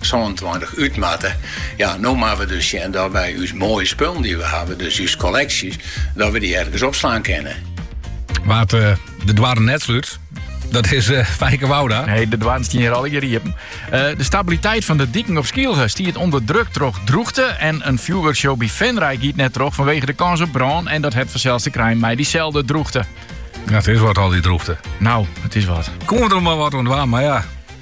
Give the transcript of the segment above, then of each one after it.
sânentweintich út moatte. Ja, no moatte we dus sjen dat wy ús moaie spullen dy't we hawwe, dus ús kolleksjes, dat we dy ergens opslaan kinne. Wa't eh, de doarren net slút, dat is uh, Fijke Wouda. Nee, de doarren steane hjir al hjir uh, de stabiliteit fan de diken op Skylge stiet ûnder druk troch droechte. En in fjoerwurkshow by Venray giet net troch fanwege de kâns op brân. En dat hat fansels te krijen mei dyselde droechte. Ja, it is wat al dy droechte. No, it is wat. Komt der mar wat oan mar ja,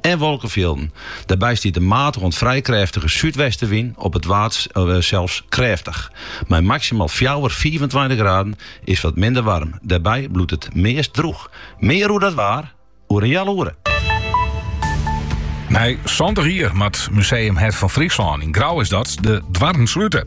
en wolkefjilden. Dêrby stiet in matige oant frij krêftige súdwestewyn, op it Waad sels krêftich. Mei maksimaal fjouwer, fiifentweintich graden is wat minder waarm. Dêrby bliuwt it meast drûch. Mear oer dat waar oer in heal oere. Nei santich jier moat Museum Hert fan Fryslân, yn Grou is dat, de doarren slute.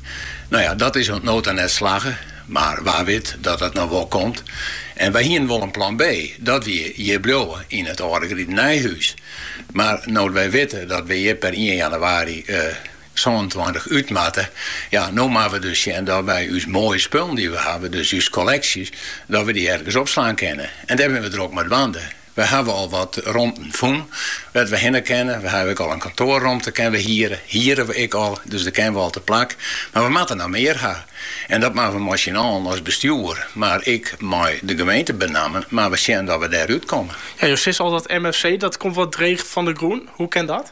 No ja, dat is oant no ta net slagge, mar wa wit dat dat noch wol komt. En wy hiene wol in plan B, dat wie hjir bliuwe yn it âlde gritenijhûs. Mar no't wy witte dat wy hjir per ien jannewaarje sânentweintich út moatte, ja, no moatte we dus sjen dat wy ús moaie spullen dy't we hawwe, dus ús kolleksjes, dat we dy ergens opslaan kinne. En dêr binne we drok mei dwaande. We hawwe al wat romten fûn wêr't we hinne kinne. We hawwe ek al in kantoarromte kinne we hiere, hiere we ek al, dus dêr kinne we al teplak. Mar we moatte noch mear ha. En dat moatte we mei syn allen as bestjoer, mar ek mei de gemeente benammen, moatte we sjen dat we dêr út komme. Jo sizze al dat MFC dat komt wat dreech fan de grûn. Hoe kin dat?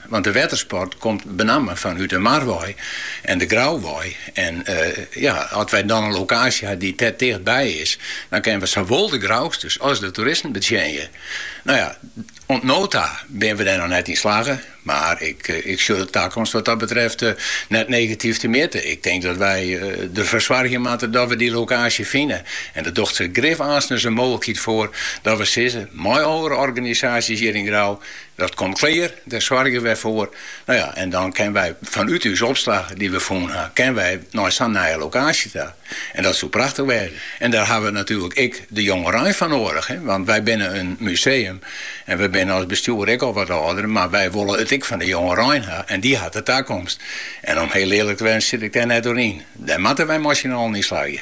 Want de wettersport komt benammen fanút de mar wei en de Grou wei. En ja, as wy dan in lokaasje ha dy't dêr ticht by is, dan kinne we sawol de Grousters as de toeristen betsjinje. No ja, oant no ta binne we dêr noch net yn slagge, mar ik sjoch de takomst wat dat betreft net negatyf temjitte. Ik tink dat wy derfoar soargje moatte dat we dy lokaasje fine. En der docht sich grif aanstens in mooglikheid foar dat we sizze mei oare organisaasjes hjir yn Grou, Dat komt klear, dêr soargje wy foar. No ja, en dan kinne wy fanút ús opslach dy't we fûn ha, kinne wy nei sa'n nije lokaasje ta. En dat soe prachtich wêze. En dêr hawwe we natuerlik ek de jongerein foar noadich, want wy binne in museum en we binne as bestjoer ek al wat âlder, mar wy wolle it ek fan de jongerein ha en dy hat de takomst. En om hiel earlik te wêzen sit ik dêr net oer yn. Dêr moatte wy mei syn allen yn slagje.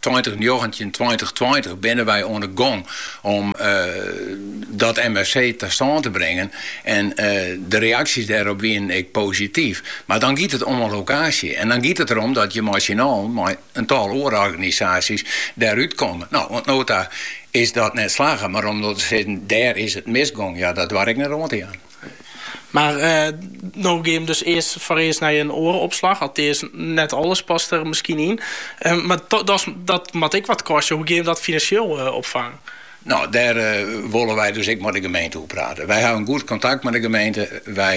Tweintich njoggentjin tweintich tweintich binne wy oan de gong om dat MFC ta stân te bringen. En de reaksjes dêrop wienen ek posityf. Mar dan giet it om in lokaasje. En dan giet it derom dat je mei syn allen, mei in tal oare organisaasjes, dêr út komme. No, oant no ta is dat net slagge. Mar om no te sizzen, dêr is it misgong, ja, dat doar ik net oan te jaan. Mar no gean jim dus earst foarearst nei in oare opslach. Altears net alles past der miskien yn. Mar dochs dat moat ek wat kostje. Hoe gean jim dat finansjeel opfangen? No, dêr wolle wy dus ek mei de gemeente oer prate. Wy hawwe in goed kontakt mei de gemeente. Wy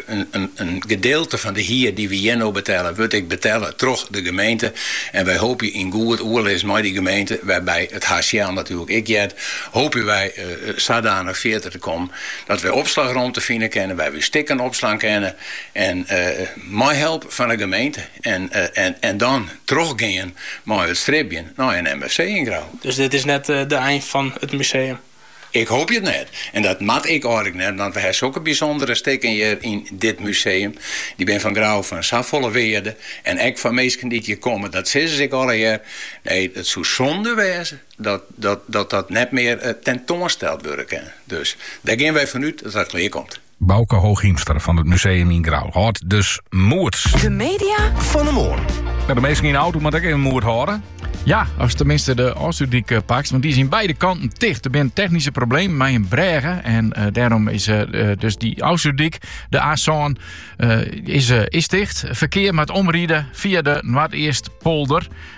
in gedeelte fan de hier dy we hjir no betelle wurdt ek betelle troch de gemeente. En wy hoopje yn goed oerlis mei dy gemeente, wêrby it HCL natuerlik ek heart, hoopje wy sadanich fierder te kommen Dat wy opslagromte fine kinne wêr't we stikken opslaan kinne en mei help fan 'e gemeente en dan trochgean mei it stribjen nei in MFC yn Grou. Dus dit is net de ein fan it museum? Ik hoopje it net. En dat moat ek eigenlik net, want we ha sokke bysûndere stikken hjir yn dit museum. Dy binne foar Grou fan safolle wearde en ek foar minsken dy't hjir komme. Dat sizze se ek allegear. Nee, it soe sûnde wêze. dat dat net mear tentoansteld wurde kin. Dus dêr gean wy fan út dat dat klear komt. Bauke Hooghiemster fan it museum yn Grou hâldt dus moed. De media fan de moarn. No, de minsken yn de auto moatte ek even moed hâlde. Ja, ast teminsten de Ofslútdyk eh, pakst, want dy is yn beide kanten ticht. Der binne technyske problemen mei in brêge en eh, dêrom is eh, dus dy Ofslútdyk, de A7, is, is ticht. Ferkear moat omride fia de Noardeastpolder.